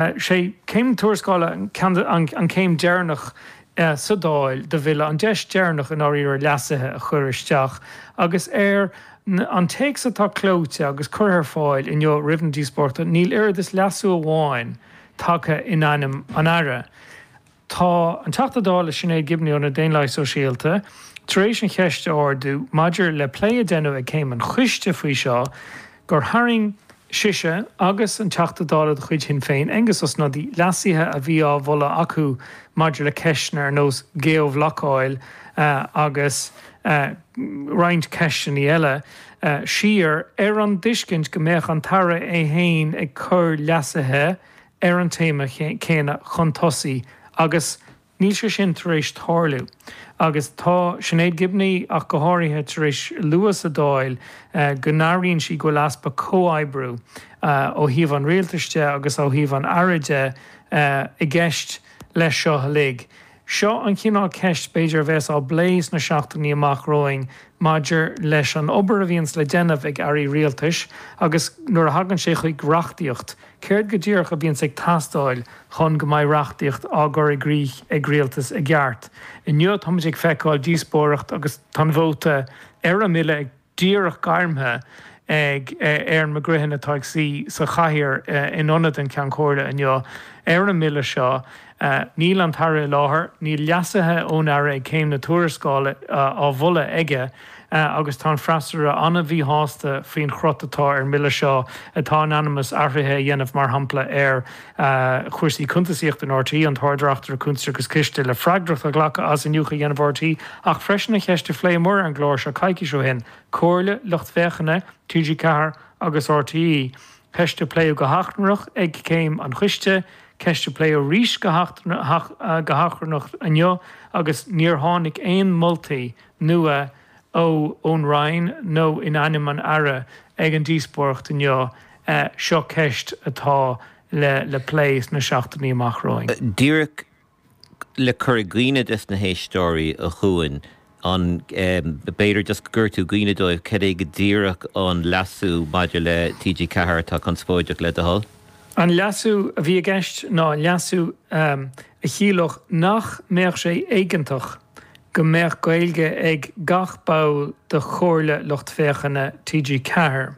Sé Céim na Tuarascála an chéim dheireanach sa Dáil do Bhille, an deis dheireanach i ndáiríre leasuithe a chur isteach, agus ar an téacs atá clóite agus curtha ar fáil inniu roimh na díospóireachta níl oiread is leasú amháin tagtha in ainm an Aire. Tá an Teachta Dála Sinéad Gibney ó na Daonlathaigh Sóisialta tar éis an cheist a ardú maidir le plé a deineadh ag Céim an Choiste faoi seo gur tharraing sise agus an Teachta Dála de chuid Shinn Féin, Aengus Ó Snodaigh, leasuithe a bhí á mholadh acu maidir le ceisteanna ar nós geo-bhlocáil agus roinnt ceisteanna eile siar ar an dtuiscint go mbeadh an tAire é féin ag cur leasuithe ar an téama céanna chun tosaigh agus níl sé sin tar éis tarlú agus tá Sinéad Gibney ach go háirithe tar éis lua sa Dáil go n-airíonn sí go bhfuil easpa comhoibriú ó thaobh an Rialtais de agus ó thaobh an Aire de i gceist leis seo uilig. Seo an chineál ceist b'fhéidir a bheas á bplé sna seachtainí amach romhainn maidir leis an obair a bhíonns le déanamh ag Airí Rialtais agus nuair a thagann sé chuig reachtaíocht, céard go díreach a bhíonns ag teastáil chun go mbeidh reachtaíocht á gcur i gcrích ag Rialtas i gceart. Inniu táimid ag feiceáil díospóireacht agus tá an vóta ar an mBille ag. díreach gairmthe ag Erin McGreehan atá ag suí sa chathaoir in ionad an Cheann Comhairle inniu ar an mBille seo. Níl an tAire i láthair, níl leasuithe ón Aire ag Céim na Tuarascála á mholadh aige agus tá an freasúra an-mhíshásta faoin chrot atá ar an mBille seo atá in ainm is athruithe a dhéanamh mar shampla ar chúrsaí cuntasaíochta in RTÉ, an tArd-Reachtaire Cuntas agus Ciste le freagracht a ghlacadh as iniúchadh a dhéanamh RTÉ, ach freisin an cheist a phléamar ar an gclár seo coicís ó shin, comhairle lucht féachana TG4 agus RTÉ, ceist a pléadh go hachrannach ag Céim an Choiste, ceist a pléadh arís go hachrannach inniu agus níor tháinig aon mholtaí nua ná. ó ón Roinn nó in ainm an Aire ag an díospóireacht inniu, seo ceist atá le plé sna seachtainí amach romhainn. Díreach le cur i gcuimhne des na héisteoirí a Chuain, an b'fhéidir just go gcuirfidh tú i gcuimhne dóibh cad é go díreach an leasú maidir le TG4 atá conspóideach le do thoil? An leasú a bhí i gceist ná leasú. a chiallódh nach mbeadh sé éigeantach go mbeadh Gaeilge ag gach ball de Chomhairle Lucht Féachana TG4.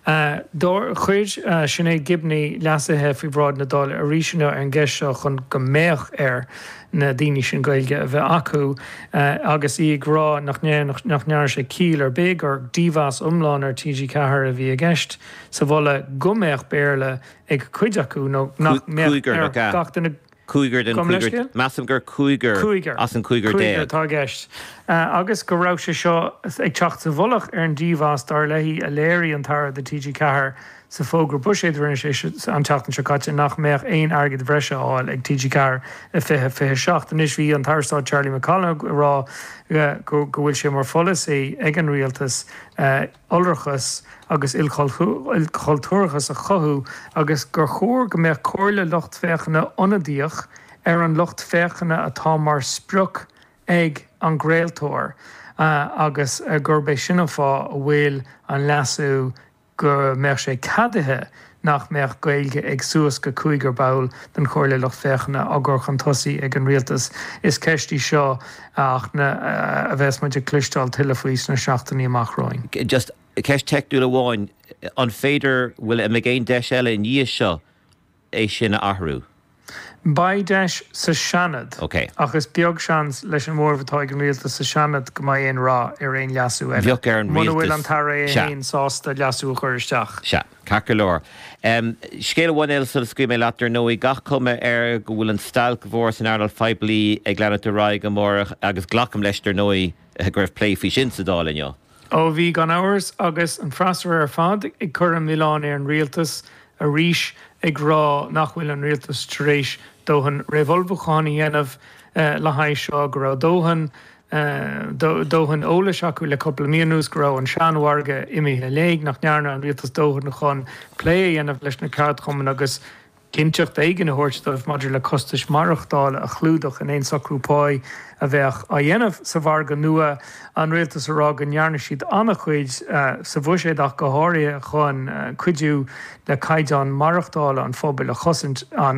Chuir Sinéad Gibney leasuithe faoi bhráid na Dála arís inniu ar an gceist seo chun go mbeadh ar na daoine sin Gaeilge a bheith acu agus í ag rá nach ndearna sé ciall ar bith gur dímheas iomlán ar TG4 a bhí i gceist sa mholadh go mbeadh Béarla ag cuid acu nó nach mbeadh ach ag an gcúigear. Measaim gur cúigear as an gcúigear déag. Cúigear atá i gceist. Agus go raibh sé seo ag teacht sa mhullach ar an dímheas, dar léi, a léirigh an tAire do TG4 sa bhfógra buiséid a rinne sé an tseachtain seo caite nach mbeadh aon airgead breise á fháil ag TG4 i 2027. Anois bhí an tAire Stáit Charlie McConalogue ag rá go bhfuil sé mar pholasaí ag an Rialtas iolrachas agus ilchultúrachas a chothú agus gur chóir go mbeadh comhairle lucht féachana ionadaíoch ar an lucht féachana atá mar sprioc ag an gcraoltóir agus gurb é sin an fáth a bhfuil an leasú go mbeadh sé ceadaithe nach mbeadh Gaeilge ag suas go cúigear ball den Chomhairle Lucht Féachana á chur chun tosaigh ag an Rialtas. Is ceist í seo, a Áine, a bheas muid ag cloisteáil tuilleadh fúithi sna seachtainí amach romhainn. Just ceist teicniúil amháin, an féidir, bhfuil, an mbeidh aon deis eile i ndiaidh seo é sin a athrú? Beidh deis sa Seanad, OK, ach is beag seans leis an mhóramh atá ag an Rialtas sa Seanad go mbeidh aon rath ar aon leasú eile, muna bhfuil an tAire é féin sásta leasú a chur isteach. Sea, ceart go leor. Scéal amháin eile sula scaoilfidh mé leat, dar ndóigh, gach cuma air go bhfuil an stailc mhór san earnáil phoiblí ag leanúint ar aghaidh amárach, agus glacaim leis, dar ndóigh, go raibh plé faoi sin sa Dáil inniu. Ó bhí, gan amhras, agus an freasúra ar fad ag cur an mhilleáin ar an rialtas arís ag rá nach bhfuil an rialtas tar éis dóthain réamhullmhúchán a dhéanamh le haghaidh seo, go raibh dóthain dóthain eolais acu le cúpla mí anuas, go raibh an seanmhargadh imithe i léig, nach ndearna an rialtas dóthain chun plé a dhéanamh leis na ceardchumainn agus. cinnteacht éigin a thabhairt dóibh maidir le costais maireachtála a chlúdach in aon socrú pá a bheadh á dhéanamh sa mhargadh nua, an Rialtas a rá go ndearna siad an-chuid, sa bhuiséad ach go háirithe, chun cuidiú le caighdeán maireachtála an phobail a chosaint.